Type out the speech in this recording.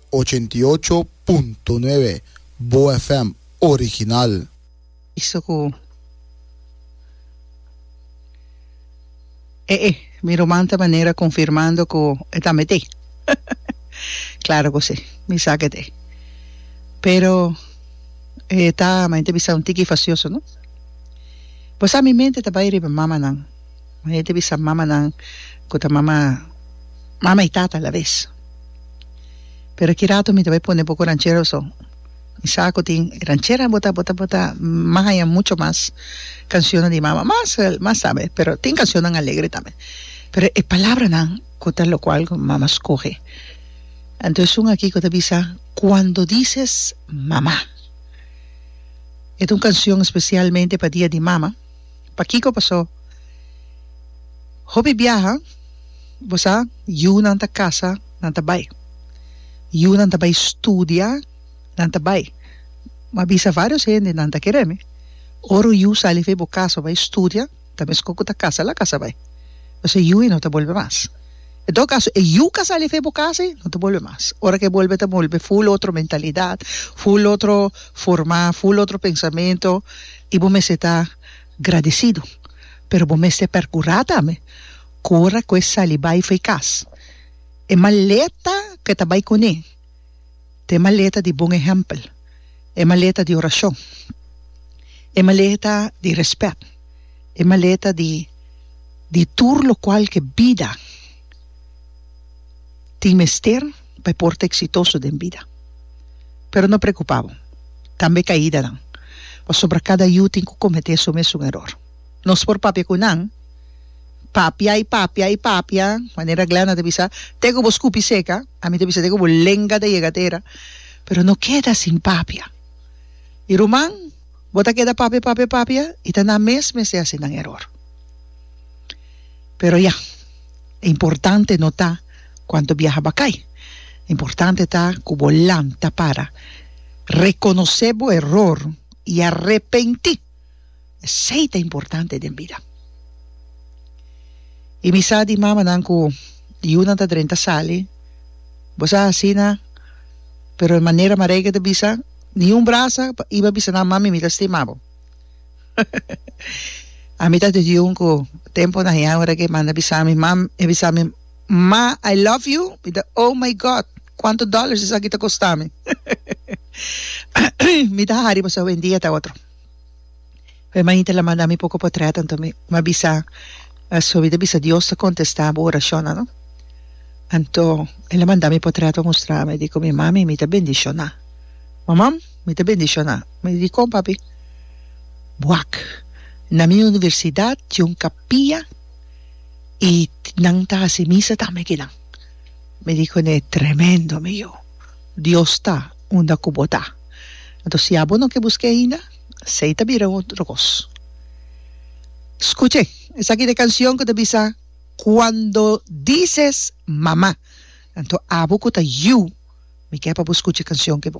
Ochenta i ocho punto nuebe Boa FM original. Bisto cu e e mi ruman ta manera confirmando cu e tambe t'e. Claro cu si, mi sa cu e t'e. Pero e ta, ma e ta bisa un tiki facioso, no? Bo sa mi mente ta bay riba mamanan. Mane ta bisa mamanan ku ta mama mama i tata alabes. Pero aki ratu mi ta bai pone poko ranchero so. Mi sa ku tin ranchera bo ta bo ta bo ta mahaña mucho mas kanshonnan di mama. Mas mas tambe pero tin kanshonnan alegre tambe. Pero e palabranan ku ta lokual ku mama skohe. Anto es un aki ku ta bisa Cuando dices mamá. E ta un kanshon spesialmente pa dia di mama. Pakiko? Paso hopi biaha bo sa yunan ta kasa nan ta bai, yunan ta bai studia nan ta bai, m'a bisa varios hende nan ta kere mi ora yu sali for bo kasa bai studia ta meskor ku ta kasa la kasa bai paske yu ei no ta bolbe mas en todo kaso e yu ka sali for bo kasa ei no ta bolbe mas ora ke bolbe ta bolbe full otro mentalidad full otro forma full otro pensamento. I bo mester ta gradisidu, pero bo mester perkurá tambe ku ora ku e sali bai for e kas, e maleta ku e ta bai kuné ta e maleta di bon ehèmpel, e maleta di orashon, e maleta di rèspèt, e maleta di di tur lokual ku e bida tin mester. pa e por ta eksitoso den bida. Pero no preokupá bo, tambe kaidanan, pasobra kada yu tin ku kometé su mesun eror. Nos por papia ku nan, papia i papia i papia, manera Glenna ta bisa, te ku bo skupi seka, ami ta bisa te ku bo lenga ta yega tera, pero no keda sin papia. I ruman, bo ta keda papia, papia, papia i ta nan mes mester hasi nan eror. Pero ya, e importante no ta. Cuanto biaha bakai. Importante ta cu bo lanta para, reconoce bo error y a repenti. Esey ta importante den bida. Y mi sa di mamanan cu yiunan ta drenta sali, bo sa asina, pero e manera Marijke ta bisa, ni un brasa pa iba bisa nan, Mami mi ta stima bo. Ami ta di un cu temponan ya ora cu e manda bisa mi, mam, e bisa mi. Ma I love you mi ta oh my God cuanto dollars esaki ta costa mi mi ta hari paso wendi e ta otro hermanita la manda mi poco potret anto mi mi a bisa paso mi ta bisa Dios ta contesta bo oracionnan no anto ela manda mi potret pa mustra mi dico mi mami mi ta bendiciona mamam mi ta bendiciona mi dicon papi wak na mi universidad tin un capilla y nan ta haci misa tambe aki nan. Mi di cune, Tremendo mi yu, Dios ta unda cu bo ta. Entonces si abo no ke busque ainda, esey ta bira otro cos. Scuche, esaki ta e cancion cu ta bisa, Cuando dices mama, enton abo cu ta yu, mi ke pa bo scucha e cancion aki bo.